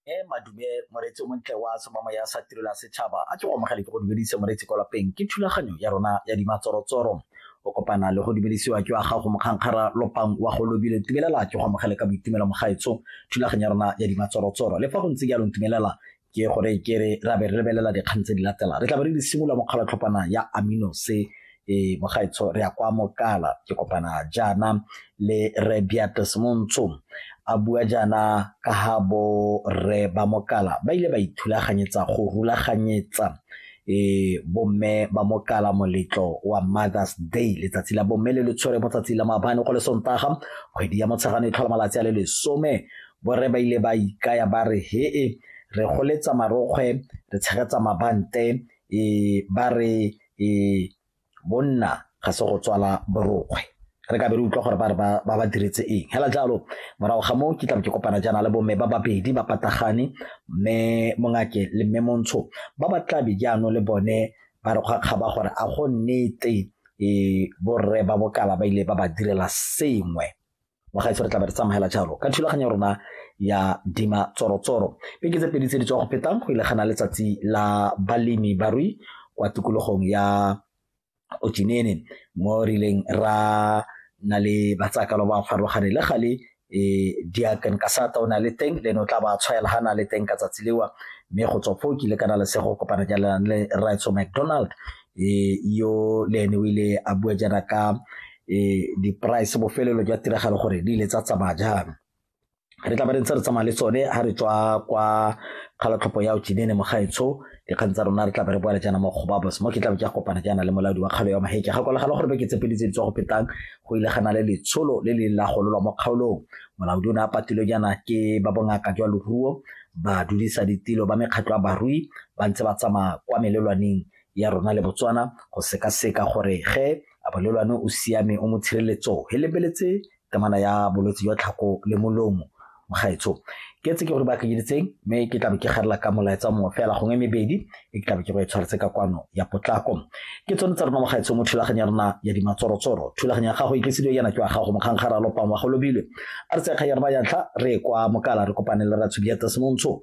e madume moreetsi o montle wa somamo ya sa tirelo ya setšhaba a ke go amogele ke go dumedise moreetsi kwa lapeng ke thulaganyo ya rona ya dimatsorotsoro o kopana le go dumedisiwa ke wa gago mokgankgara lopang wa go lobile tumelela ke go amogele ka boitumelo mogaetso thulaganyo ya rona ya dimatsorotsoro le fa go ntse jalo ntumelela ke gore ke re ra be re lebelela dikgang tse di latelang re tla be re di simolola mo kgalatlhopana ya aminose e mogaetsho re ya kwa mokala ke kopana jaana le re beatus montsho a bua jaana ka ga bo re ba mokala ba ile ba ithulaganyetsa go rulaganyetsa e bomme ba mokala moletlo wa mothers day letsatsi la bomme le le tshwere mo tsatsi la maabane go le sontaga kgwedi ya motshegane e tlhola malatsi a le lesome Borre ba ile ba ikaya ba re hee re goletsa marokgwe re tshegetsa mabante e ba re e bonna ga se go tswala borokgwe re ka be re utlwa gore ba re ba ba diretse eng hela jalo morago ga moo ke tla ke kopana jaana le bomme ba babedi ba patagane mme mongake le mme montsho ba ba tlabe jaanong le bone ba re kgwa kgaba gore a go nnete e borre ba bokala ba ile ba ba direla sengwe bagaetsho re tla be re tsamogela jalo ka thulaganyo rona ya dima tsorotsoro beke tse pedi tse di tswa go fetang go ilegana letsatsi la balemi barui kwa tikologong ya ojenene mo rileng ra na le batsakalo ba farologane le gale e diakan ka sata o na le teng le no tla ba tshwaela ha na le teng ka tsatsi lewa mme go tswa foo ke ile kana le sego kopana jalang le Raitso McDonald e yo le ene o ile a bua jaana ka e di-price bofelelo jwa tiragalo gore di ile tsa tsamaya jang re tla ba re ntse re tsamaya le tsone ga re tswa kwa kgalatlhopho ya otinene mogaetsho dikgang tsa rona re tla be re boela jaana mo kgobabos mo ke tlabe ke a kopana jaana le molaodi wa kgalo ya maheke ga kolagala gore beke tsepedi tse di tswa go petang go ile gana le letsholo le le la gololwa mo kgaolong molaodi o ne a patilwe jaana ke ba bongaka jwa loruo ba dudisa ditilo ba mekgatlho ya barui ba ntse ba tsamaya kwa melelwaneng ya rona le Botswana go sekaseka gore ge abolelwane o siame o mo tshireletso he lebeletse temana ya bolwetse jwa tlhako le molomo mogaetsho ke tse ke gore ba kenyeditseng mme ke tlabe ke garela ka molaetsa mongwe fela gongwe mebedi e ke tlabe ke go e tshwaretse ka kwano ya potlako ke tsone tsa rona mogaetsho mo thulaganyo ya rona ya dimatsorotsoro thulaganyo ya gago e tlisediwe yana ke wa gago mokgankgara lopang wa go lobile a re tsekgang ya rona ya ntlha re kwa mokala re kopane le ratshudi ya tasemontsho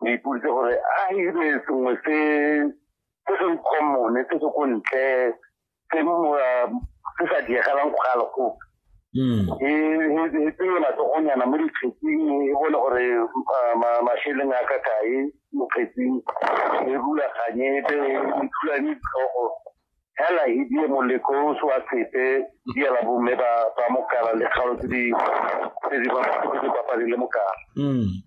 ke ipoditse gore a ebe sengwe se se se commone se se ko ntle se uh, se sa diegelang go gale gope hmm. e, e, e tseye matsogonyana mo dikgetsing e bone gore uh, masheleng a ka kae mo kgetsing e rulaganye ebe e thulane ditlhogo hela e die moleko o se wa sepe diela bomme ba mokala le kgalo tse di bapadile mokala hmm.